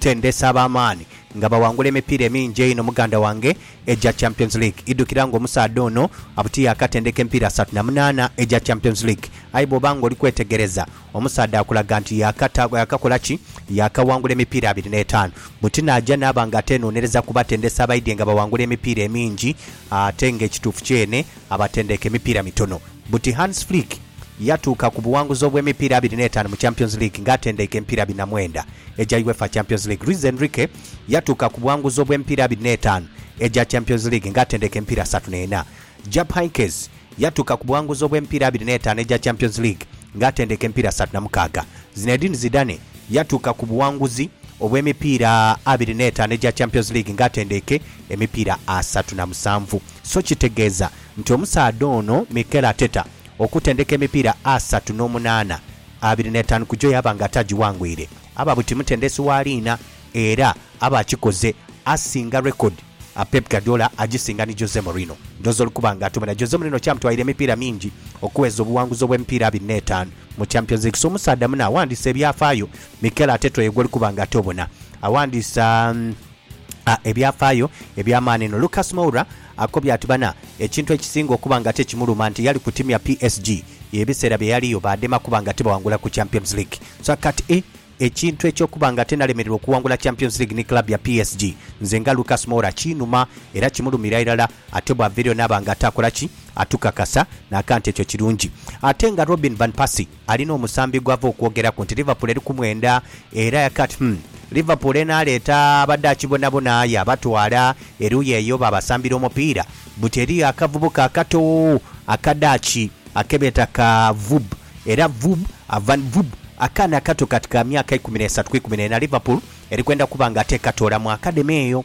Tendesi ab'amaani nga bawangula emipiira emingi einho muganda wange egya Champions League. Idhukira ng'omusaadha ono abuti yaakatendeka emipiira asatu na munaana egya Champions League. Aye bw'oba ng'oli kwetegereza, omusaadha akulaga nti yaakata, yaakakola ki? Yaakawangula emipiira abiri n'etaanu. Buti naaja naaba ng'ateenhonhereza ku batendesi abaidhye nga bawangula emipiira emingi ate ng'ekituufu kyene, Abatendeka emipiira mitono. Buti Hans Flick yatuuka ku buwanguzi obw'emipiira abiri n'etaanu mu Champions League nga atendeika emipiira abiri na mwenda egya Uefa Champions League. Luis Enrique yatuuka ku buwanguzi obw'emipiira abiri n'etaanu egya Champions League nga atendeika emipiira asatu n'ena. Jupp Heynckes yatuuka ku buwanguzi obw'emipiira abiri n'etaanu egya Champions League nga atendeika emipiira asatu na mukaaga. Zinedine Zidane yatuuka ku buwanguzi obw'emipiira abiri n'etaanu egya Champions League nga atendeika emipiira asatu na musanvu. So kitegeeza nti omusaadha ono Mikel Arteta okutendeka emipiira asatu n'omunaana, abiri n'etaanu ku gyo yaaba nga ataagiwangwire, aba buti mutendesi wa liina era aba akikoze asinga rekodi a Pep Guardiola agisinga ni Jose Mourinho. Ndhooza oli kuba nga atomera. Jose Mourinho kyamutwalira emipiira mingi okuweza obuwanguzi obw'emipiira abiri n'etaanu mu Champions League. So omusaadha muno awandiisa ebyafaayo, Mikel Arteta oyo gw'oli kuba nga ate obona awandiisa. A Ebyafaayo eby'amaani inho. Lucas Moura akobye ati bana ekintu ekisinga okuba nga tekimuluma nti yali ku tiimu ya PSG ye ebiseera bye yaliyo baadema kuba nga tibawangula ku Champions League so akati e ekintu eky'okuba nga ate nalemererwa okuwangula Champions League ni club ya PSG nze nga Lucas Moura kinuma era kimulumira irala ate bwava eriyo naaba nga ate akola ki atukakasa naka nti ekyo kirungi ate nga Robin Van Persie alina omusambi gw'ava okwogeraku nti Liverpool eri ku mwenda era yaka ati, Humm, Liverpool enaaleeta Abadaaki bonabona yaabatwala eruuyi eyo baabasambira omupiira? Buti eriyo akavubuka akato Akadaaki ake beeta ka Vub, era Vub, Van Vub, akaana akato kati ka myaka ikumi n'esatu ku ikumi n'ena, Liverpool eri kwenda kuba nga tekatoola mu akademi eyo.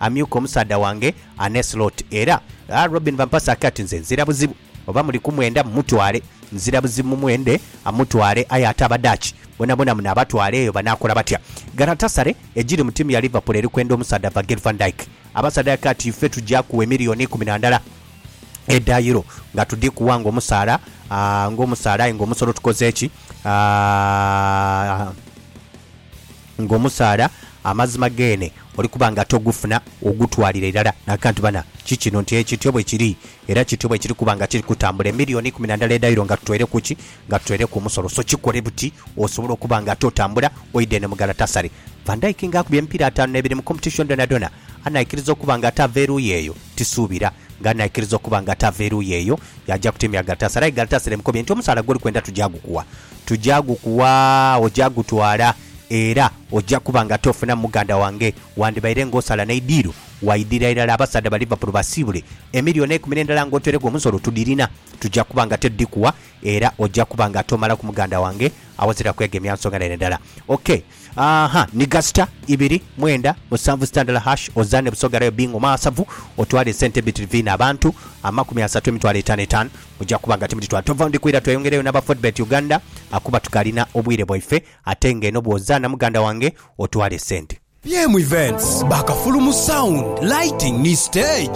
Amyuka omusaadha wange Anne Slot era a Robyn Van Pasak ati, Nze nzira buzibu oba muli kumwenda mumutwale. Nzira buzibu mumwende amutwale aye ate Abadaaki bonabona munaabatwala eyo banaakola batya? Galatasaray egiri mu tiimu ya Liverpool eri kwenda omusaadha Virgil van Dijk. Abasaadha aka ati, Ife tugya kuwa emiliyoni ikumi na ndala edha Euro nga tudhikuwa ng'omusaala, a ng'omusaala aye ng'omusolo tukoze ki? a. ng'omusaala, amazima geene oli kuba nga togufuna ogutwalira irala n'akantu. Bana, ki kino nti ekityo bwe kiri, era kityo bwe kiri kuba nga kiri kutambula. Emilioni ikumi na ndala edha Euro nga tutoire ku ki? Nga tutoire ku musolo. So kikole buti osobole okuba nga ate otambula oidha eno mu Galatasaray. Van Dijk ng'akubye emipiira ataanu n'ebiri mu competition dhonadhona, anaikiriza okuba nga ate ava eruuyi eyo? Tisuubira nga anaikiriza okuba nga ate ava eruuyi eyo yaaja ku tiimu ya Galatasaray. Aye Galatasaray emukobye nti, Omusaala gw'oli kwenda tugya gukuwa. tuja gukugha, oja gutwala, era oja kuba nga tofunamu muganda wange. Wandibaire ng'osala n'eidiiro, waidhira irala abasaadha ba Liverpool basiibule. Emilioni eikumi n'endala ng'otweiregho omusolo tudhirina. Tuja kuba nga tedhikuwa, era oja kuba nga tomalaku muganda wange awazira kwegemya nsonga n'eyo endala. Okay. Ahaa ni gasita ibiri mwenda musanvu sita ndala hash ozaane Busoga rayo Bingo maasavu otwale esente ebitri vina abantu amakumi asatu emitwalo etano etano muja kuba nga timuditwala tova ndi kwira tweyongereyo naba Fortbet Uganda akuba tukalina obwire bwaife ate nga eno bwozaana muganda wange otwale esente. PM Events, ba kafulu mu sound, lighting ni stage.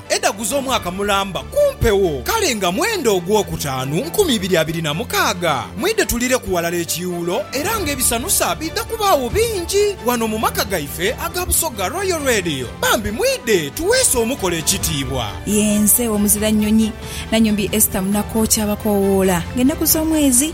Edhagu z'omwaka mulamba ku mpewo, kale nga mwenda ogwokutaanu nkumi ibiri abiri na mukaaga. Mwidhe tulireku ghalala ekiiwulo era nga ebisanusa biidha kubaagho bingi ghano mu maka gaife aga Busoga Royal Radio. Bambi mwidhe tuweese omukolo ekitiibwa. Yenze Omuzira Nnyonyi Nanyombi Esther Munakookya Abakoowoola ng'ennaku z'omwezi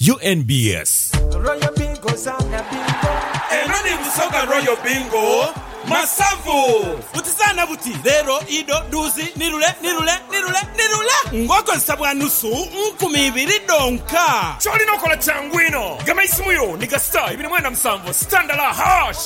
UNBS. Royal Bingo zaana bingo. Eno ni Busoga Royal Bingo Masavu. Buti zaana buti, leero, ido, dhuuzi, ni lule, ni lule, ni lule, ni lule ng'okozesa bwa nusu nkumi ibiri dhonka. Ky'olina okola kyangu inho, gema eisimu yo ni gasita ibiri mwenda musanvu, sitandala, hash.